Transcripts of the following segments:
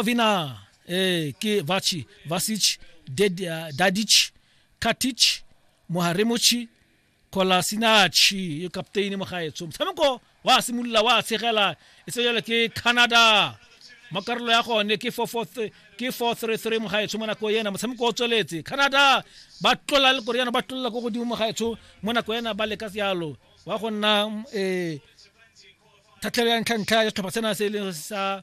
Vina eh ke Vachi Vasic Ded- eh, Dadic Katic Moharemochi Kolasinachi yo kapteini mo gaetsho motshameko wa simolola wa tshegela e se jalo ke Canada mo karolo ya gone ke 4-4-3 ke 4-3-3 mo gaetsho mo nako ena motshameko o tsweletse Canada ba tlola le Koreana ba tlola ko godimo mo gaetsho mo nako ena ba leka sealo wa go nna eh thathelelo ya ntlha ntlha ya setlhopha sena se e leng sa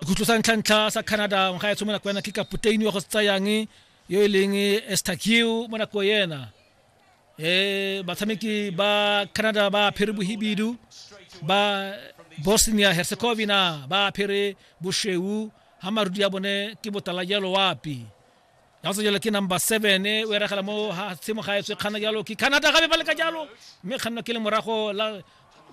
sekhutlo sa ntlhantlha sa canada ngwaga etsho mo nako ena ke kapoteini wa go se tsayang yo e leng estakiu mo nako ena um batshameki ba canada ba apere bohibidu ba bosnia herzegovina ba apere bosheu ga marudi ya bone ke botala jalo wapi ya se jalo ke number seven e o eragela mo ha tshimo ga etswe kgana jalo ke canada gabe ba leka jalo mme kganno ke le morago la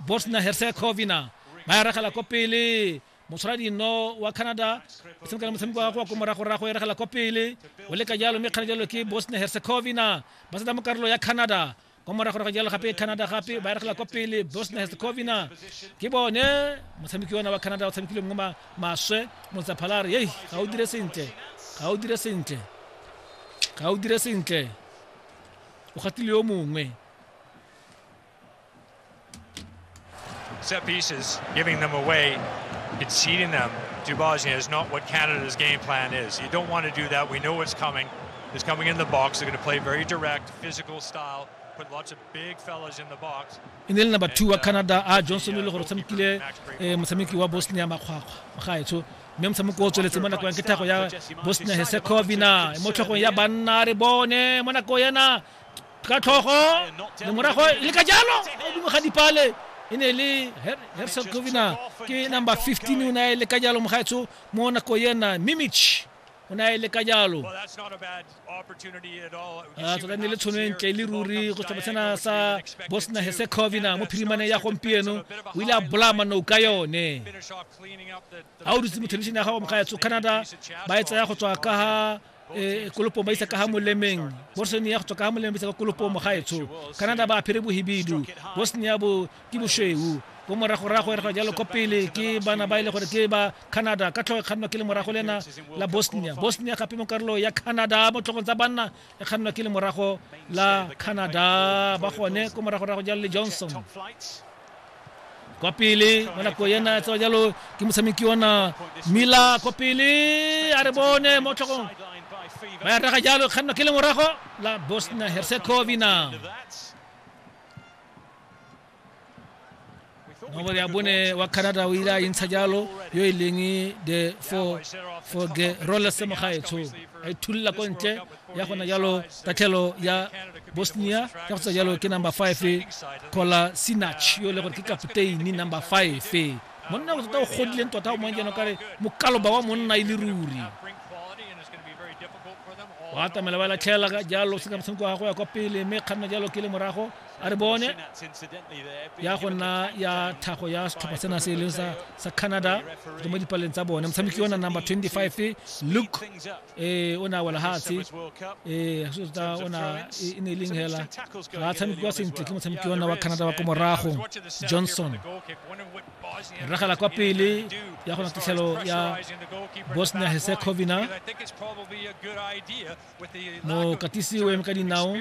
bosnia herzegovina ba eragela ko pele motshwara dino wa canada e tshameka le motshameko wa kwa ko moragorago eragela ko pele o leka jalo mme kgana jalo ke bosnia herzegovina ba seta mo karolo ya canada kwa morago ga jalo gape canada gape ba eregela kwa pele bosnia herzegovina ke bone motshameki ona wa canada o tshamekile mo maswe motsaphalare ei ga o dire sentle ga o dire sentle ga o dire sentle o gatile yo mongwe Set pieces, giving them away, conceding them to Bosnia is not what Canada's game plan is. You don't want to do that. We know what's coming. It's coming in the box. They're going to play very direct, physical style. e ne e le number two wa uh, canada a ah, johnson e le gore o tshamekile eh, motshameki wa bosnia makgwakgwa gaetsho mme motshameko o tsweletse mo nakong ya kethago ya bosnia hesekovina mo tlhogong ya banna re bone mo nakong yana ka tlhogo le morago le ka jalo godimo ga dipale e ne le herson covina ke number 15 o ne a le ka jalo mogaetsho mo nako yena mimich o ne a le ka jalo a tota ne le tshono e ntle le ruri go tswa sena sa bosnia herzegovina mo phirimane ya gompieno o ile a bolaya manou ka yone ga o dutse mo thelebišene ya gago mogaetsho canada ba e tsaya go tswa ka ga e kolopo ba isa ka ha molemeng borsone ya go tswa ka ha molemeng ba isa ka kolopo mo gaetsho canada ba aphere bohibidu bosnia bo ke boshweu ko moragorago e re jalo ko pele ke bana ba e le gore ke ba canada ka tlhogo e kgannwa ke le morago le ena la bosnia bosnia gape mo karolo ya canada mo tlhogong tsa banna e kgannwa ke le morago la canada ba gone ko moragorago jalo le johnson kwa pele mo nako ena tsa jalo ke motshameki ona mila kwa pele a re bone mo tlhokong ba ya raga jalo kganno ke le morago la bosnia herzegovina nomoro ya bone wa canada o ile a intsha jalo yo e leng the for for the rollers mogaetsho a ithulela ko ntle ya gona jalo tatlhelo ya bosnia ka go tsa jalo ke number five kola sinach yo e le gore ke kapteini number five monna o tota o godileng tota o mong jeno kare mokaloba wa monna e le ruri wa atamela ba latlhela ka jalo se ka motshameko wa go ya kwa pele mme kganna jalo ke le morago a re bone ya go nna ya thago ya setlhopha sena se e leng sa canada mo dipaleng tsa bone motshameki yona number 25 luke ee o ne a wela fatshe ee go tota o na e, e ne e leng hela ga a tshamekiwa sentle ke motshameki ona wa canada wa ko morago johnson ragela kwa pele ya gona tatlhelo ya bosnia herzegovina mokatisi o eme ka dinao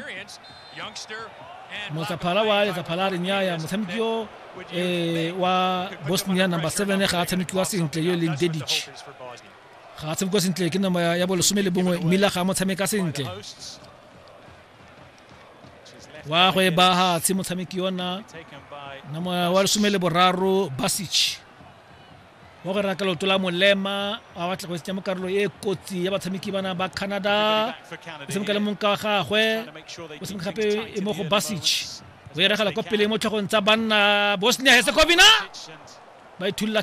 motsaphala wa letsaphala a re nyaya motshameki yo eh, wa bosnia number 7 ga a tshamekiwa sentle yo e leng dedic ga a tshameka sentle ke nama ya bolesome le bongwe mmila ga a mo tshameka sentle wa go e baga tshe motshameki yona nama wa lesome le boraro basich wa go rera ka leoto la molema a batla go tsenya mo karolo e kotsi ya batshameki bana ba canada o tshameka le monka wa gagwe o tshameka gape e mo go basich o e regela kwa pele mo tlhogong tsa banna bosnia hesekovina ba ithulula